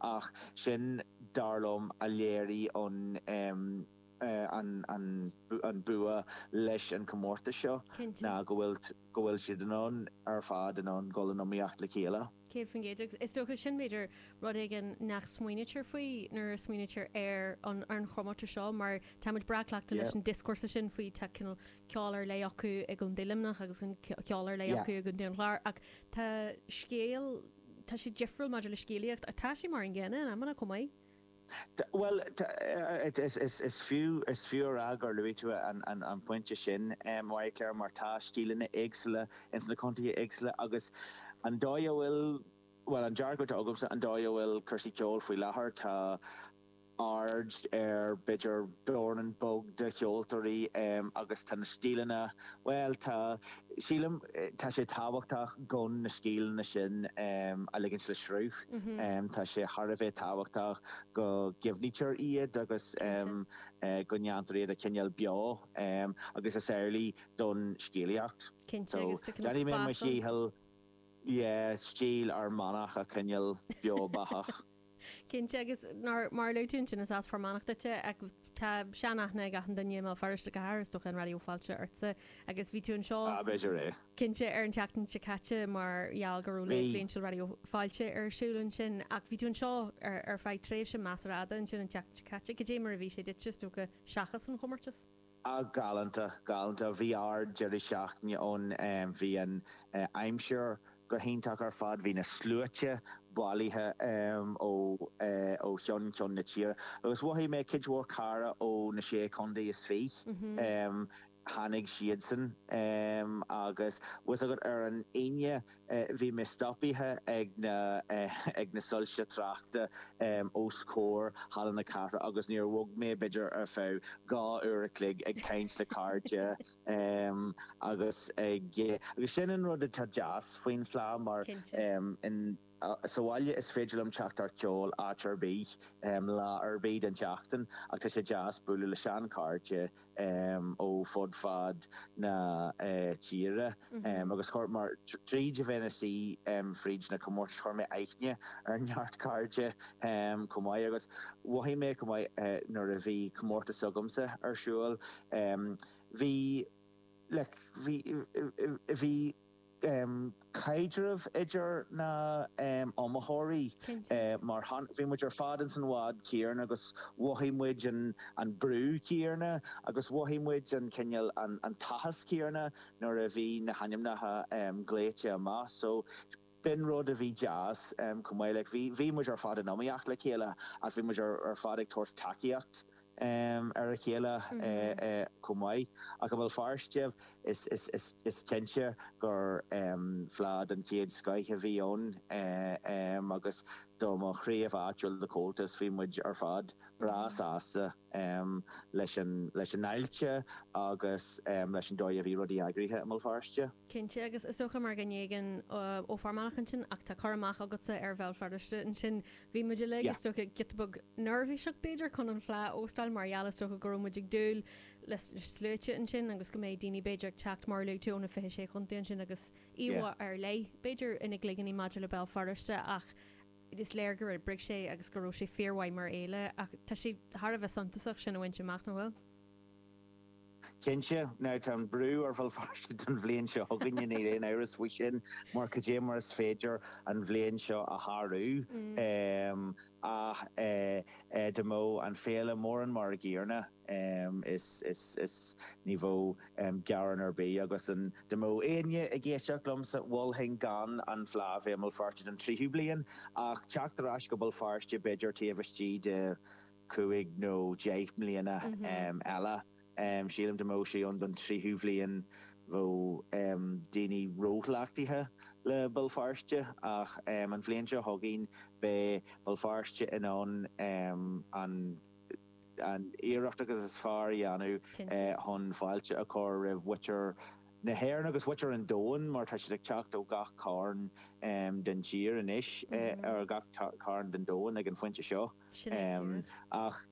Ach sin, dar liom, a léirigh an bua leis an comórtas seo ná go bhfuil siad ar fad in ann dul in iomaíocht le chéile. Céad faoin gcéad. Agus is dócha sin, b'fhéidir, rud éigin nach smaoinítear faoi nuair a smaoinítear ar an chomórtas seo mar táimid breá cleachta leis an dioscúrsa sin faoi tá ceol ar leith acu i gContae Luimneach agus ceol ar leith acu i gContae an Chláir ach tá scéal tá sé difriúil maidir le scéalaíocht ach tá sé mar an gcéanna in amanna chomh maith. Bhuel, is fiú a rá gur luaigh tú an pointe sin, Marie-Claire, mar tá stíleanna éagsúla ins na contaetha éagsúla agus an dóigh a bhfuil, bhuel, an dearcadh atá agamsa, an dóigh a bhfuil cúrsaí ceoil faoi láthair, tá, aird ar b'fhéidir buíon bheag de cheoltóirí agus tá na stíleanna, bhuel tá, sílim, tá sé tábhachtach gan na stíleanna sin a ligint le sruth. Tá sé thar a bheith tábhachtach go gcuimhnítear iad agus go ndéantar iad a choinneáil beo agus is amhlaidh don scéalaíocht. So déanfaidh mé mo dhícheall, yeah, stíl Fhear Manach a choinneáil beo beathach. Cinnte agus mar a luaigh tú ansin is as Fear Manach duit ach tá seanaithne ag achan duine i mBéal Feirste go háirithe is dócha ar Raidió Fáilte ortsa agus bhí tú anseo cinnte ar an tseachtain seo caite mar gheall go raibh Lár Stáitse Raidió Fáilte ar siúl ansin ach bhí tú anseo ar feadh tréimhse measartha fada ansin an tseachtain seo caite. Goidé mar a bhí sé duitse is dócha seachas an chomórtas? Ah galánta, galánta. Bhí ard-deireadh seachtaine ann. Bhí an aimsir go hiontach ar fad. Bhí na sluaite bailithe ó cheann ceann na tíre. Agus mhothaigh mé cuid mhór cairde ó na sé chontae is fiche. Tháinig siadsan agus tá a fhios agat ar an Aoine, Bhí mé stopaithe ag na soilse tráchta os comhair Halla na Cathrach agus níor bhog mé b'fhéidir ar feadh dhá uair a chloig ag caint le cairde agus ag. Agus sin an rud atá deas faoin Fleá mar sa bhaile is féidir liom teacht ar cheol áit ar bith, lá ar bith den tseachtain ach tá sé deas bualadh le seanchairde, ó fud fad na tíre agus chuir, tríd a bheith ina suí fríd na comórtais chuir mé aithne ar neart cairde chomh maith agus mhothaigh mé chomh maith nuair a bhí comórtas s'agamsa ar siúl bhí, like, bhí, bhí. caidreamh idir na iomaitheoirí. Cinnte. Mar shampla, bhí muid ar fad ins an bhád céarna agus mhothaigh muid an brú céarna agus mhothaigh muid an cineál an t-áthas céarna nuair a bhí na hainmneacha glaoite amach. So, b'in rud a bhí deas chomh maith. Like, bhí muid ar fad in iomaíocht le chéile ach bhí muid ar fad ag tabhairt tacaíochta ar a chéile chomh maith. Ach i mBéal Feirste is cinnte gur fleá den chéad scoith a bhí ann agus do mo chraobh áitiúil de Chomhaltas bhí muid ar fad breá sásta leis an fháilte agus leis an dóigh a bhí rudaí eagraithe i mBéal Feirste. Cinnte agus is dócha mar go n-éigean ó Fear Manach ansin ach tá an-chur amach agatsa ar Bhéal Feirste ansin Bhí muid uilig, is dócha, giota beag neirbhíseach b'fhéidir chun an fleá a óstáil mar gheall is dócha go raibh muid ag dúil le sluaite ansin agus go mbeadh daoine b'fhéidir ag teacht mar a luaigh tú ó na 26 chontae ansin agus íomhá ar leith b'fhéidir ina gcloiginní maidir le Béal Feirste ach is léir gur oibrigh sé agus go raibh sé fíormhaith mar fhéile ach tá sé thar a bheith suntasach sin a bhaint amach, nach bhfuil? Cinnte, now tá an brú ar Bhéal Feirste don bhliain seo chugainn, níl aon amhras faoi sin, mar cad é mar is féidir an bhliain seo a shárú ach dá mbeadh an féile mórán mar an gcéanna is ní bheadh gearán ar bith agus dá mbeadh aon duine ag éisteacht liomsa mholfainn gan an Fleá a bheith i mBéal Feirste don tríú bliain ach teacht ar ais go Béal Feirste b'fhéidir taobh istigh de cúig nó deich mbliana eile. Sílim dá mbeadh sé ann don tríú bhliain bheadh daoine róchleachtaithe le Béal Feirste ach an bhliain seo chugainn beidh Béal Feirste in ann an iarracht is fearr a dhéanamh chun fáilte a chur roimh mhuintir na hÉireann agus mhuintir an domhain mar tá siad ag teacht ó gach carn den tír anois, ó gach carn den domhan ag an phointe seo. Sin é díreach. Ach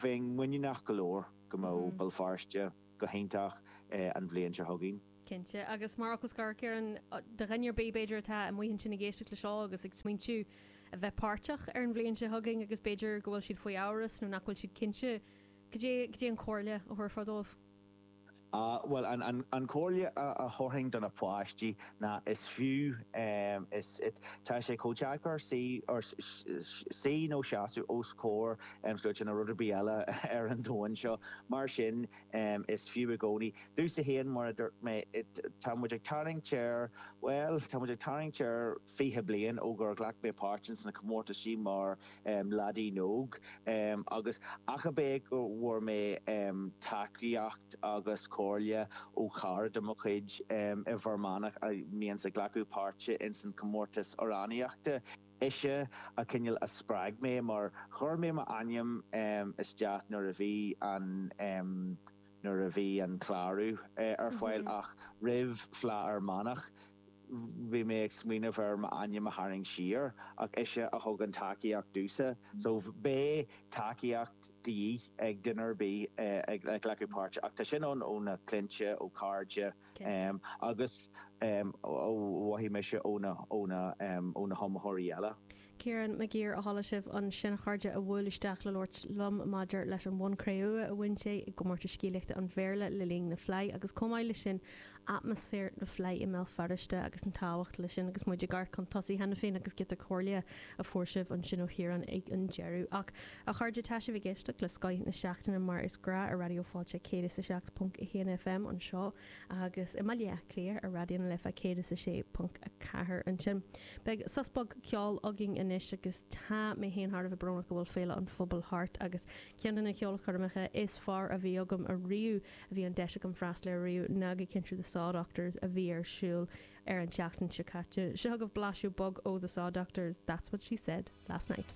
bheinn muiníneach go leor go mbeadh Béal Feirste go hiontach an bhliain seo chugainn. Cinnte. Agus mar fhocal scoir, Ciarán, do dhuine ar bith b'fhéidir atá amuigh ansin ag éisteacht le seo agus ag smaointiú a bheith páirteach ar an bhliain seo chugainn agus b'fhéidir go bhfuil siad faoi amhras nó nach bhfuil siad cinnte, cad é an comhairle a thabharfá dóibh? Bhuel, an comhairle a thabharfainn do na páistí ná is fiú, is, tá sé chomh deacair suí, or, suí nó seasamh os comhair sluaite ná rud ar bith eile ar an domhan seo, mar sin is fiú i gcónaí. Dús a haon, mar a dúirt mé, tá muid ag tarraingt ar, bhuel, tá muid ag tarraingt ar fiche bliain ó gur ghlac mé páirt ins na comórtaisí mar, leaidín óg agus ach a b'é go bhfuair mé tacaíocht agus comhairle ó chara de mo chuid i bhFear Manach a bíonns ag glacadh páirte ins an comórtas amhránaíochta. Ise a cineál a spreag mé mar chuir mé mo ainm isteach nuair a bhí an nuair a bhí an clárú ar fáil ach roimh Fleadh Fhear Manach. bhí mé ag smaoineamh ar m'ainm a tharraingt siar ach ise a thug an tacaíocht domhsa so bheadh tacaíocht de dhíth ag duine ar bith ag glacadh páirte ach tá sin ann ó na cliantaí, ó cairde agus ó mhothaigh mise ó na hiomaitheoirí eile. Kieran Maguire a chuala sibh ansin a chairde a bhuail isteach le labhairt liom maidir leis an bhonn cré-umha a bhain sé i gcomórtas scéalaíochta an Bhéarla le linn na Fleidhe agus chomh maith leis sin atmaisféar na Fleidhe i mBéal Feirste agus an tábhacht leis sin agus muid ag amharc chun tosaigh cheana féin agus giota comhairle a fuair sibh ansin ó Chiarán ag an deireadh ach a chairde tá sibh ag éisteacht le Scoith na Seachtaine mar is gnách ar Raidió Fáilte 107.1 FM anseo agus i mBaile Átha Cliath ar Raidió na Life 106.4 ansin. Beidh sos beag ceoil againn anois agus tá mé féin thar a bheith brónach go bhfuil Féile an Phobail thart agus ceann de na ceolchoirmeacha is fearr a bhí agam ariamh a bhí an deis agam freastal air ariamh ná gig sin le The Sawdoctors a bhí ar siúl ar an tseachtain seo caite. Seo chugaibh blaiseadh beag ó The Sawdoctors, That's What She Said Last Night.